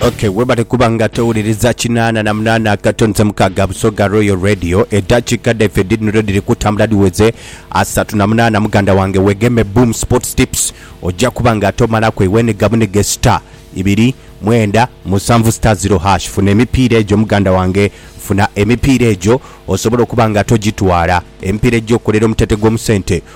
Ok webale kuba nga towuliriza kinaana na munaana akatonze mukaaga Busoga Royal Radio. Eddakiika dhaife dhidhino dhiri kutambula dhiweze asatu na munaana. Muganda wange wegeme Boom Sports Tips ojja kuba nga tomalaku eweniga bunige star ibiri mwenda musanvu star zero hash funa emipiira egyo muganda wange funa emipiira egyo osobole okuba nga togitwala. Emipiira egyo okolera omutete gw'omu sente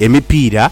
Emipiira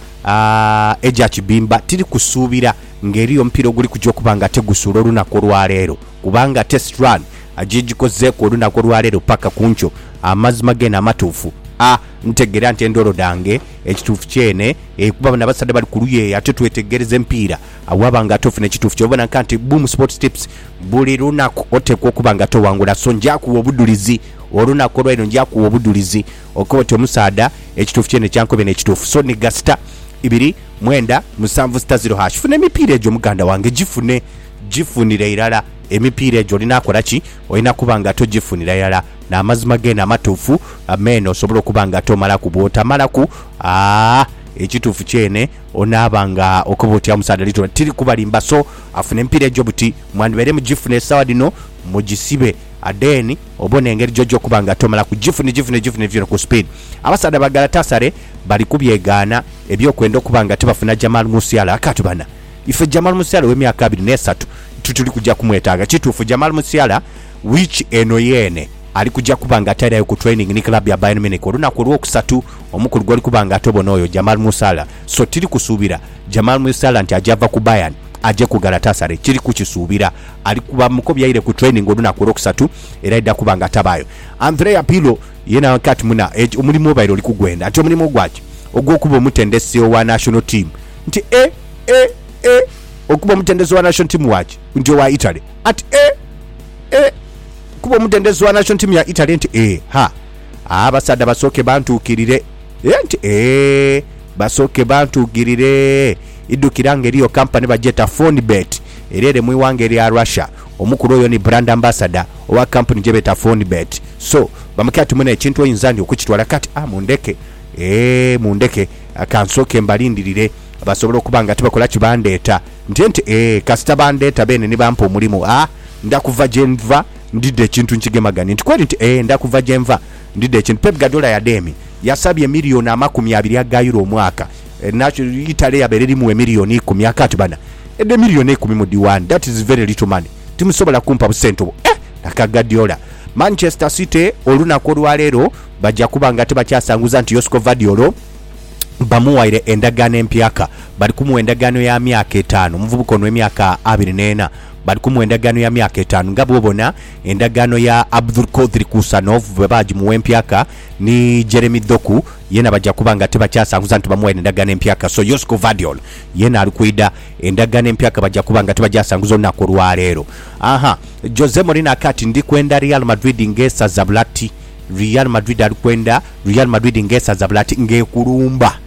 egya kibimba tiri kusuubira ng'eriyo omupiira oguli kuja okuba nga tegusuula olunaku olwaleero kubanga Test Run gyegikozeeku olunaku olwaleero paka kunkyo. Amazima geene amatuufu a ntegera nti endoolo dhange ekituufu kyeene e kuba bano abasaadha bali kuluya eyo ate twetegereza emipiira agho waba nga ate ofuna ekituufu kyo. Obona nka nti Boom Sports Tips buli lunaku oteekwa okuba nga towangula so njakugha obudhulizi olunaku olwaleero njakugha obudhulizi Okoba oti omusaadha ekituufu kyene kyankobye n'ekituufu so nigga sita ibiri mwenda musanvu sita ziro hash funa emipiira egyo muganda wange gifune gifunire irala emipiira egyo olina kola ki olina kuba nga togifunira irala n'amazima geene amatuufu meene osobole okuba nga tomalaku bwotamalaku aah ekituufu kyene onaaba nga okoba oti omusaadha literally tiri kubalimba so afune emipiira egyo buti mwandibaire mugifuna esawa dhino mugisibe adeni Obona engeri joja okuba nga tomala ku gifune gifune gifune gifune ku speed. Abasaadha ba Galatasaray bali kubyegaana ebyokwenda okuba nga tibafuna Jamal Musiala akati bana ife Jamal Musiala owe myaka abiri ne satu tituli kuja kumwetaaga. Kituufu Jamal Musiala week eno yeene ali kuja kuba nga tairayo ku training ni club ya Bayern Munich olunaku olwokusatu omukulu gwoli kuba nga tobona oyo Jamal Musala so tiri kusuubira Jamal Musiala nti aja va ku Bayern aje ku Galatasaray kiri kukisuubira Ali kuba mukobi aire ku training olunaku olwokusatu era aidha kuba nga atabaayo. Andrea Pirlo ye naghanka ati, Muna, eki omulimu obaire oli kugwenda. Nti omulimu gwaki? Ogw'okuba omutendesi owa national team. Nti, E! E! E! Okuba omutendesi owa national team waki? Nti owa Italy. Ati, E! E! Okuba omutendesi owa national team ya Italy? Nti, E! Ha! A! Abasaadha basooke bantuukirire. E! Nti, E! Basooke bantuukirire. Idhukira nga eriyo kampani bagyeeta Fonibet. era ere mu ighanga erya Russia. Omukulu oyo ni brand ambassador owa kampuni gyebeeta Fonbet so bamukya ati mune ekintu oyinza ndi okukitwala kati a mundheke eeh mundheke kansooke mbalindirire basobole okuba nga tibakola ki bandheeta ntye nti eeh kasita bandheeta beene ni bampa omulimu a ndha kuva gyenva ndidha ekintu nkigemaganie nti kweri nti eeh ndha kuva gyenva ndidha ekintu Pep Guardiola ya Demi yasabye million amakumi abiri aga Euro omwaka Enhacu itale yabeera erimu emiliyoni ikumi I can't bana edho emiliyoni eikumi mudhi waani that is very little money timusobola kumpa busente obwo eeh aka Guardiola Manchester City olunaku olwaleero baja kuba nga tibakyasanguza nti Josko Vardiolo bamuwaire endagaano empyaka bali kumuwa endagaano ya myaka etaanu omuvubuka ono emyaka abiri neena bali kumuwa endagaano ya myaka etaanu nga bwobona endagaano ya Abdulkodir Kusanov bwebagimuwa empyaka ni Jeremy Doku Yeena baja kuba nga tibakyasanhuza nti bamuwaire Ndagaano Empya ka. So Yosiko Vadiol yeena ali kwidha. Endagaano Empya ka baja kuba nga tibagyasanhuza olunaku olwaleero. Aha. Jose Mourinho aka ati, Ndi kwenda Real Madrid ng'esaza bulati. Real Madrid ali kwenda Real Madrid ng'esaza bulati, ng'ekulumba,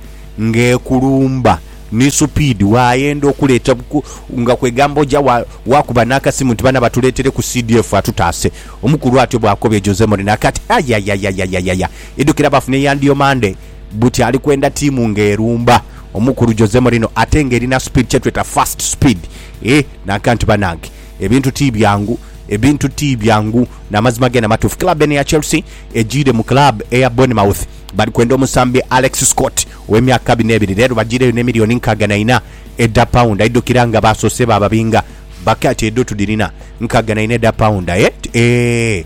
ng'ekulumba ni supiidi. Waayenda okuleeta ku, nga kwegamba oja wa, waakuba n'akasimu nti, Bana batuleetereku CDF atutaase. Omukulu atyo bw'akobye Jose Mourinho aka ati, Ayayayayayaya! Idhukira baafune ya ndiyo Mande buti ali kwenda tiimu nga erumba omukulu Jose Mourinho ate nga erina speed kyetweta fast speed eeh nanka nti banange ebintu tibyangu ebintu tibyangu namazima gena matuufu club eno eya Chelsea ejiire mu club eya Bournemouth bali kwenda omusambi Alex Scott owe myaka abiri nebiri rero bajiireyo ne million nkaaga na ina edha pound idhukira nga basoose bababinga bakaati edho tudhirina nkaaga na ina edha pound eeh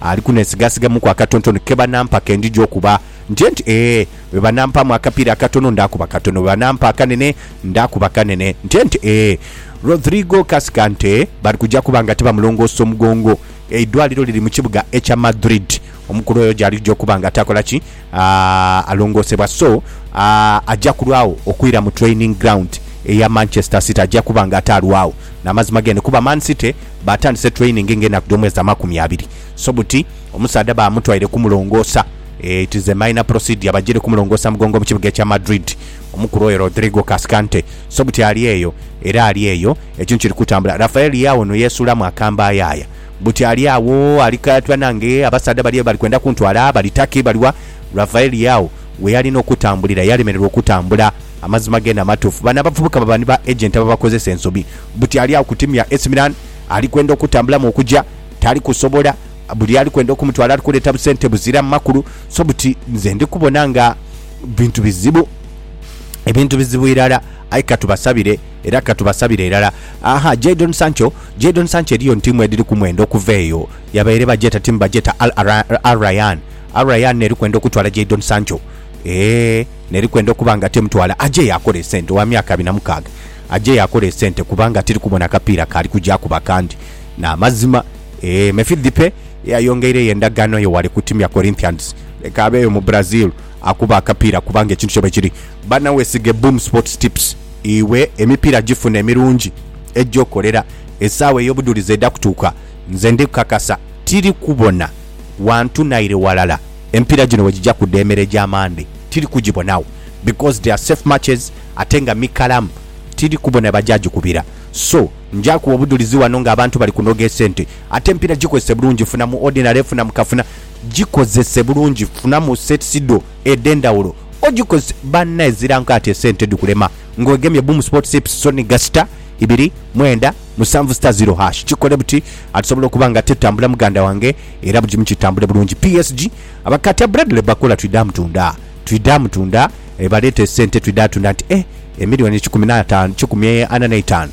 Ali kunheesigasigamuku akatontono ke banampa ke ndija okuba. Ntye nti, Ee. Bwe banampaamu akapiira akatono, ndaakuba katono. Bwe banampa akanene, ndaakuba kanene. Ntye nti, Ee. Rodrigo Cascante bali kuja kuba nga tibamulongoosa omugongo. Eidwaliro liri mu kibuga ekya Madrid. Omukulu oyo gy'alija okuba nga atakola ki? a alongoosebwa so a aja kulwagho okwira mu training ground eya Manchester City aja kuba nga ate alwagho namazima gene kuba Man City batandise training nga enaku dhomwezi amakumi abiri so buti omusaadha bamutwaire kumulongoosa e it is a minor procedure bajire kumulongoosa mugongo mu kibuga ekya Madrid omukulu oyo Rodrigo Cascante so buti ali eyo era ali eyo ekintu kiri kutambula Rafael Leao ono yeesuulamu akambayaaya. Buti ali agho ali kaatwa nange, abasaadha bali bali kwenda kuntwala, bali taki? Bali wa? Rafaeli agho we yali n'okutambulira yalemererwa okutambula. Amazima geene amatuufu, bano abavubuka baba ni ba agenti ababakozesa ensobi. Buti ali agho ku tiimu ya AC Milan, ali kwenda okutambulamu okuja, tali kusobola. Buli ali kwenda okumutwala ali kuleeta busente buziramu makulu. So buti nze ndi kubona nga bintu bizibu, ebintu bizibu irala. Aye ka tubasabire. Era ka tubasabire irala. Aha, Jadon Sancho, Jadon Sancho eriyo ntiimu edhiri ku mwendo okuva eyo. Yabaire bagyeta, tiimu bagyeta Al Ahly, Al Rayyan. Al Rayyan n'eri kwenda okutwala Jadon Sancho. Eeh, n'eri kwenda okuba nga temutwala, aje yaakole esente, wa myaka abiri na mukaaga. Aje yaakole esente kubanga tiri kubona kapiira k'ali kugya akuba kandi. Ni amazima. Eeh, Mefidhipe yayongeireyo endagaano ye wale ku tiimu ya Corinthians. Leka abeeyo mu Brazil. Akuba akapiira kubanga ekintu kye bwekiri. Bana wesige Boom Sports Tips iwe emipiira gifune emirungi egya okolera esaawa eyobudhulizi eda kutuuka. Nze ndi kukakasa tiri kubona wantu naire walala emipiira gino wegigya kuda emere gya Monday tiri kugibonagho because they are safe matches ate nga mikalamu tiri kubona webagya gikubira so ngya kuwa obudhulizi wano nga abantu bali kunoga esente ate emipiira gikozese bulungi funa mu ordinary funa mu kafuna Gikozese bulungi funamu sets dho edhendhawulo ogikozese banna ezira nkaati esente dhikulema nga wegemye Boom Sport Sips Sony ga sita ibiri mwenda musanvu sita ziro hash kikole buti ati sobola okuba nga tetambula muganda wange era bugimu kitambule bulungi PSG abakatya Bradley Bakola twidha mutunda twidha mutunda baleeta esente twidha tunda nti eh emiliyoni kikumi na taano kikumi ana neitaano.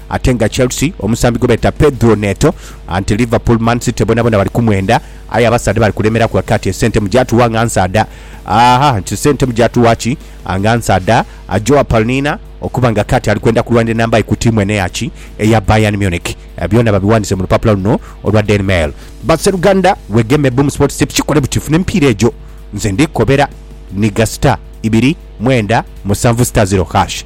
Ate nga Chelsea omusambi gwe beta Pedro Neto anti Liverpool, Man City bonabona bali kumwenda aye abasaadha bali kulemeraku ati kati esente mugyatuwa nga nsaadha aa nti esente mugyatuwa ki nga nsaadha a Joao Palnina okuba nga kati ali kwenda kulwanira enamba ye ku tiimu eno eya ki eya Bayern Munich byona babiwandise mu lupapula luno olwa Daily Mail. But seruganda wegeme Boom Sports Tip kikole buti funa emipiira egyo nze ndikukobera Niga star ibiri mwenda musanvu star zero hash.